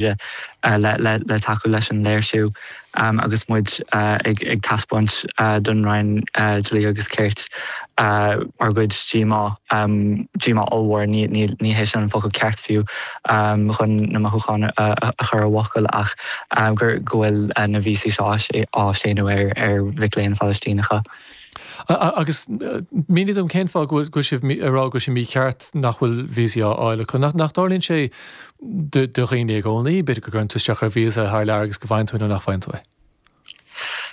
le tacú leis an léirsiú agus muid ag taispeáint don Roinn Dlí agus Cirt ár gcuid díomá, díomá ollmhór, ní hé sin an focal ceart fiú chun na mothúcháin a chur i bhfocail ach go bhfuil na víosaí seo á séanadh ar mhic léinn Phalaistíneacha. Agus mínigh dom cén fáth go bhfuil sibh ag rá go bhfuil sé mícheart nach bhfuil víosaí á fáil acu. Nach dtarlaíonn sé do dhaoine i gcónaí, b'fhéidir, go gcuireann tú isteach ar víosa thar lear agus go bhfaigheann tú é nó nach bhfaigheann tú é?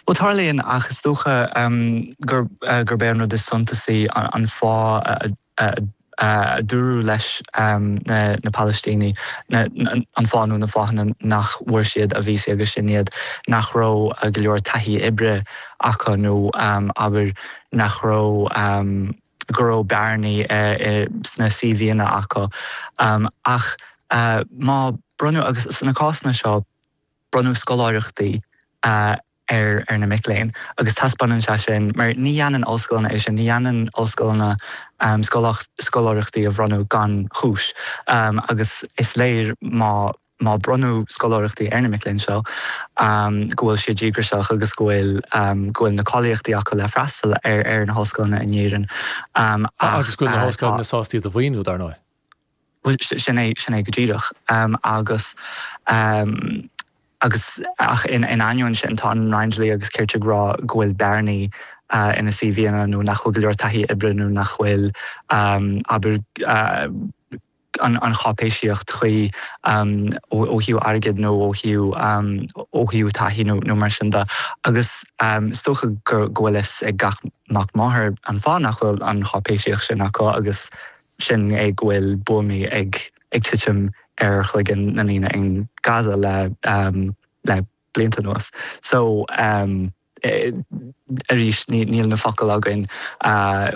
Bhuel, tarlaíonn, ach is dócha gurb é an rud is suntasaí an fáth a. a dúradh leis na Palaistínigh, an fáth nó na fáthanna nach bhfuair siad a víosaí agus sin iad nach raibh go leor taithí oibre acu nó, abair, nach raibh, go raibh bearnaí sna CVanna acu. Ach má bronnadh, agus sna cásanna seo, bronnadh scoláireachtaí. ar, ar na mic léinn. Agus taispeánann sé sin, mar ní dhéanann ollscoileanna é sin, ní dhéanann ollscoileanna scoláireachtaí a bhronnadh gan chúis. Agus is léir má, má bronnadh scoláireachtaí ar na mic léinn seo go bhfuil siad díograiseach agus go bhfuil, go bhfuil na cáilíochtaí acu le freastal ar, ar na hollscoileanna in Éirinn. Agus go bhfuil na hollscoileanna sásta iad a mhaoiniú, dar ndóigh. Bhuel, sin é, sin é go díreach. Agus, agus, ach in ainneoin sin, tá an Roinn Dlí agus Cirt ag rá go bhfuil bearnaí ina CVanna nó nach bhfuil go leor taithí oibre nó nach bhfuil, abair, an cháipéisíocht chuí ó thaobh airgid nó ó thaobh, ó thaobh taithí nó mar sin de. Agus is dócha go bhfuil fhios ag gach mac máthar an fáth nach bhfuil an cháipéisíocht sin acu agus, sin é go bhfuil buamaí ag titim ar chloigeann na ndaoine in Gaza le blianta anuas so arís níl na focail againn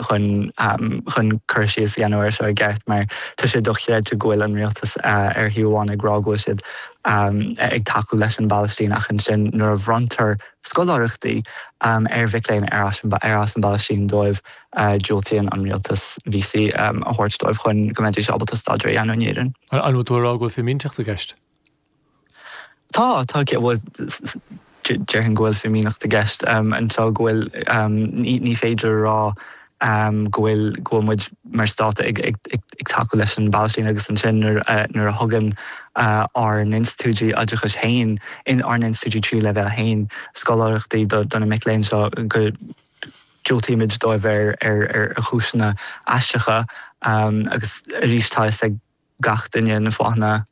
chun cur síos a dhéanamh air seo i gceart mar tá sé dochreidte go bhfuil an rialtas ar thaobh amháin ag rá go bhfuil siad ag tacú leis an bPalaistín ach ansin nuair a bhronntar scoláireachtaí ar mhic léinn ar as an bPalaistín dóibh Diúltaíonn an rialtas víosaí a thabhairt dóibh chun go mbeidís ábalta staidéar a dhéanamh in Éirinn. An bhfuil tú ag rá go bhfuil fimínteacht i gceist? Tá, tá. Bhuel, déarfainn go bhfuil fimínteacht i gceist anseo, go bhfuil, ní féidir a rá go bhfuil, go bhfuil muid mar stát ag tacú leis an bPalaistín agus ansin nuair a, nuair a thugann ár n-institiúidí oideachais féin, ár n-institiúidí tríú leibhéal féin, scoláireachtaí do na mic léinn seo go, Diúltaíodh dóibh ar chúiseanna aisteacha agus arís tá fhios ag gach duine na fáthanna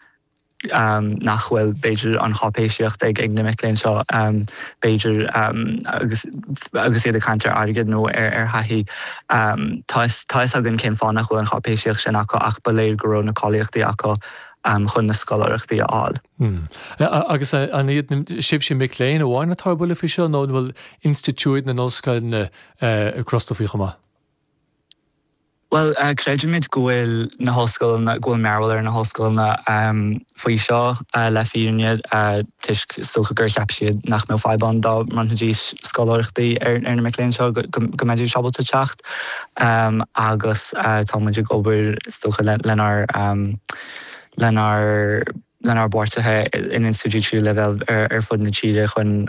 nach bhfuil. B'fhéidir an cháipéisíocht ag na mic léinn seo, b'fhéidir agus iad ag caint ar airgead nó ar thaithí. Tá fhios againn cén fáth nach bhfuil an cháipéisíocht sin acu ach ba léir go raibh na cáilíochtaí acu chun na scoláireachtaí a fháil. Agus an iad sibhse mic léinn amháin atá ar buile faoi seo nó an bhfuil institiúid na n-ollscoileanna crosta faoi chomh maith? Bhuel, creidimid go bhfuil na hollscoileanna, go bhfuil mearbhall ar na hollscoileanna faoi seo le fírinne toisc, is dócha, gur cheap siad nach mbeadh fadhb ann dá mbronnfaidís scoláireachtaí ar na mic léinn seo, go mbeidís ábalta teacht agus táimid ag obair, is dócha, lenár, lenár lenár bpáirtithe in institiúidí tríú leibhéal ar fud na tíre chun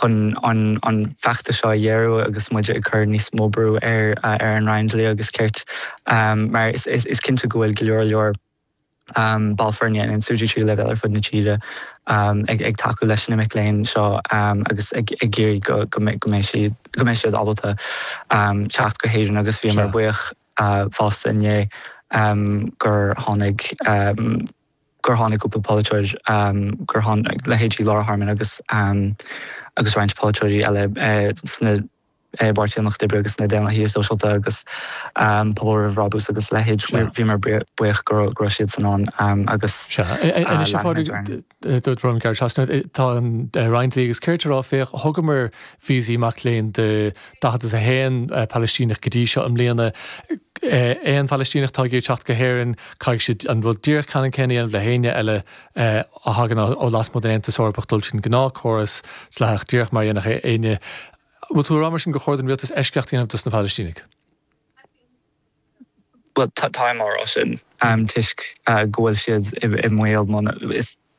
chun an feachtas seo a ghéarú agus muid ag cur níos mó brú ar an Roinn Dlí agus Cirt mar is cinnte go bhfuil go leor leor ball foirne in institiúidí tríú leibhéal ar fud na tíre ag tacú leis na mic léinn seo agus ag iarraidh go mbeidh siad ábalta teacht go hÉirinn agus bhíomar buíoch fiú i ndiaidh gur tháinig gur tháinig cúpla polaiteoir gur tháinig leithéidí Laura Harmon agus agus roinnt polaiteoirí eile sna i bPáirtí an Lucht Oibre agus sna Daonlathaithe Sóisialta agus Pobal Roimh Bhrabús agus a leithéid. Bhíomar buíoch go raibh siadsan ann agus lean muid orainn. Gearradh trasna, tá an Roinn Dlí agus Cirt ag rá, Féach, thugamar víosaí mac léinn do daichead is a haon Palaistíneach go dtí seo i mbliana. Aon Phalaistíneach atá ag iarraidh teacht go hÉirinn, caithfidh siad an rud díreach ceannann céanna a dhéanamh le héinne eile a thagann ó lasmuigh den Aontas Eorpach, dul tríd an gnáth córas dleathach, díreach mar a dhéanfadh éinne. An bhfuil tú ag rá mar sin gur chóir don rialtas eisceacht a dhéanamh dos na Palaistínigh? Bhuel, táim á rá sin toisc go bhfuil siad i mbaol.